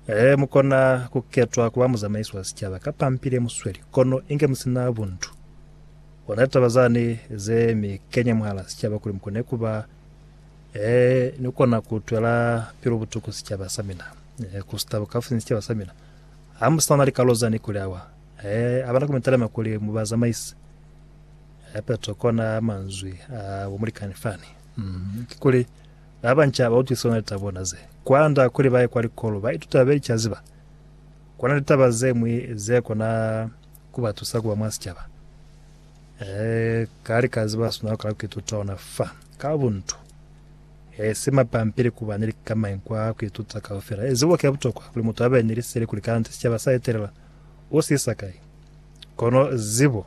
Ee, mukona kuketwa kuba muzamaisi wa sicaba ka pampi lemusweli, kono inge musina buntu. Ona litaba zani ze mikenya mwahala sicaba kuli mukone kuba, ee, nikona kutwela pilu butuku sicaba samina, ee, kusita bukafusinya sicaba samina. Hamusana likalo zani kuli awa, ee, abana kumitalema kuli mubazamaisi. Ee, Petro kona manzwi a bomulikani fani. Mm, kikuli, Ba banca ba utwisiswa na litaba bona ze kwanda kuli ba ye kwa likolo. Ba ituta be licazi ba kona litaba ze ñwi ze kona ku ba tusa ku ba mwa sicaba. Ee, ka lika ziba sina lukala ku ituta ona fa ka buntu, e si mapampili ku ba ni likamañi kwa ku ituta kaufela. Ezibo ki a butokwa kuli mutu a be ni liseli kuli kaniti sicaba sa etelela u si isa kai. Kono zibo.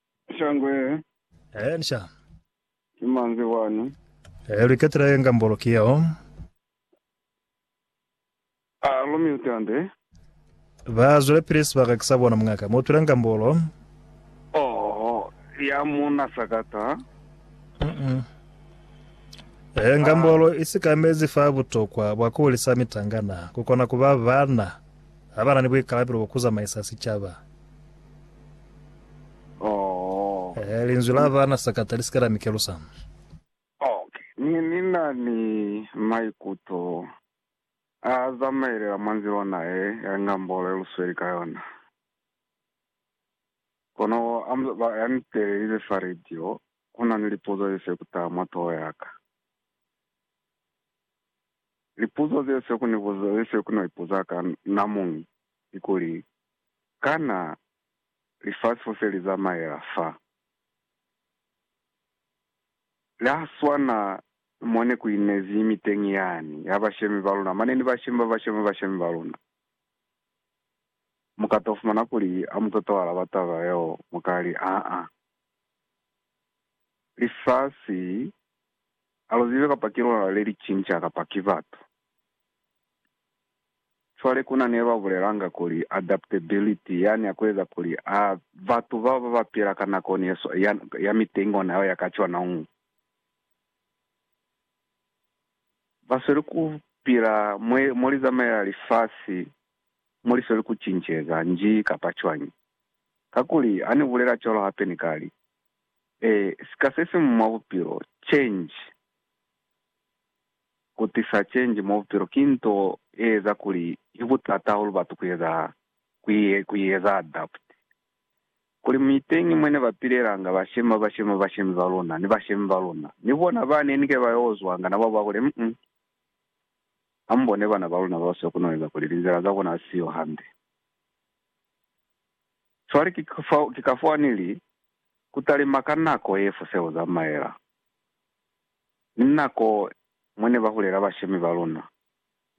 Shangwe he. Ee, ni sha. Ki manzwi wani. Ee, lu iketela ye nga mbolo ki yeo. A lu mi utande. Ba zwelepili sibaka ki sa bona muñaka. Mu utwile nga mbolo. Oho, ya mu na sakata. Uh-uh. Ee, nga mbolo i sikamezi fa butokwa bwa ku hulisa mitangana, ku kona ku ba bana ha ba na ni buikalabelo bwa ku zamaisa sicaba. Oh. Eh, linzwi la bana sakata lisika la mi kelusa. Okay. Ni, ni na ni maikuto a zamaelela mwa nzila ona ye, ya ngambolo ye lu sweli ka yona. Kono a mu, ba, ya ni telelize fa radio, ku na ni lipuzo ze se ku taha mwa toho ya ka. Lipuzo ze se ku ni buza, ze se ku no ipuza ka namuñi, ki kuli, Kana lifasi fo se li zamaela fa la swana mo ne ku inezi imiteñi yani ya bashemi ba luna? Mane ni bashemi ba bashemi bashemi ba luna. Mu ka to fumana kuli ha mu toto alaba taba yeo, mu ka li, Aa, lifasi ha lu zibe kapa ki luna le li cinca kapa ki batu. Cwale kuna ne ba bulelanga kuli adaptability yani ya kueza kuli a batu bao ba ba pila ka nakoni ye swa ya, ya mitengo nayo ya ka cwanañu. Ba sweli ku pila mwe, mo li zamaela lifasi, mo li sweli ku cinceza, nji kapa cwañi. Kakuli, ha ni bulela cwalo hape ni ka li, E, sika se siñwi mwa bupilo, change. Ku tisa change mwa bupilo ki nto ye eza kuli ki butata hahulu batu ku eza, ku, ku i eza adapt. Kuli mu iteñi mwe ne ba pilelanga, bashemi ba bashemi ba bashemi ba luna, ni bashemi ba luna, ni bona ba ne ni ke ba yo ozwanga na ba ba kuli, mm, ha mu bone bana ba luna bao se ku no eza kuli linzila za bona ha si yo hande. Cwale ki, ki ka fao ni li, Ku talima ka nako ye fo se ku zamaela. ni nako mwa ne ba hulela bashemi ba luna.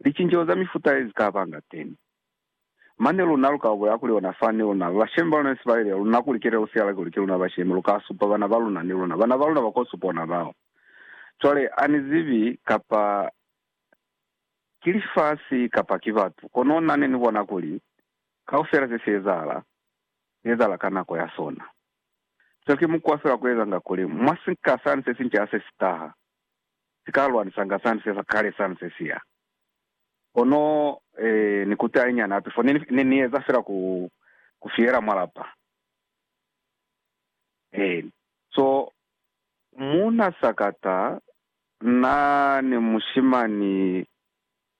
Licinceho za mifuta ye li ka ba nga teñi. Mane luna lu ka bolela kuli ona fani luna, bashemi ba luna ne si ba yelile luna kuli kelelo si yala kuli ki luna bashemi, lu ka supa bana ba luna ni luna. Bana ba luna ba ko supa ona bao. Cwale, a ni zibi kapa ki lifasi kapa ki batu, kono na ne ni bona kuli kaufela se si ezahala, si ezahala ka nako ya sona. Seo ki mukwa fela wa ku ezanga kuli mwa sinka sani se sinca se si taha, si ka lwanisanga sani se sa kale sani se si ya. Kono, ee, ni ku tahinyana hape, fo ne, ne ni eza fela ku, ku fihela mwa lapa. Eeni. So, muuna sakata, na ni mushimani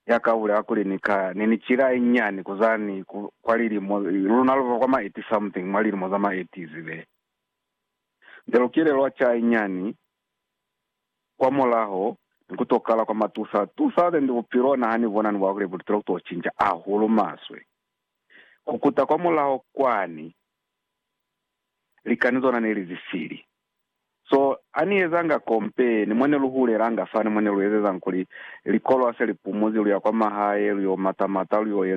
ya ka bulela kuli, Ni ka, ni ni cila ye nyani ku za ni ku, kwa lilimo, luna lu ba kwa ma eighty something, mwa lilimo za ma eighties be. Nze lu kile lwa ca ye nyani, kwa mulaho, ni ku to kala kwa matusa, tusa, then bupilo na ha ni bona ni bwa kuli butilo ku to cinca ahulu maswe. Ku kuta kwa mulaho kwani, likani zona ne li zisili. So, ha ni ezanga kompe, ni mo ne lu hulelanga fani mo ne lu ezezang kuli, likolo ha se li pumuzi, lu ya kwa mahae, lu yo mata-mata, lu yo eza.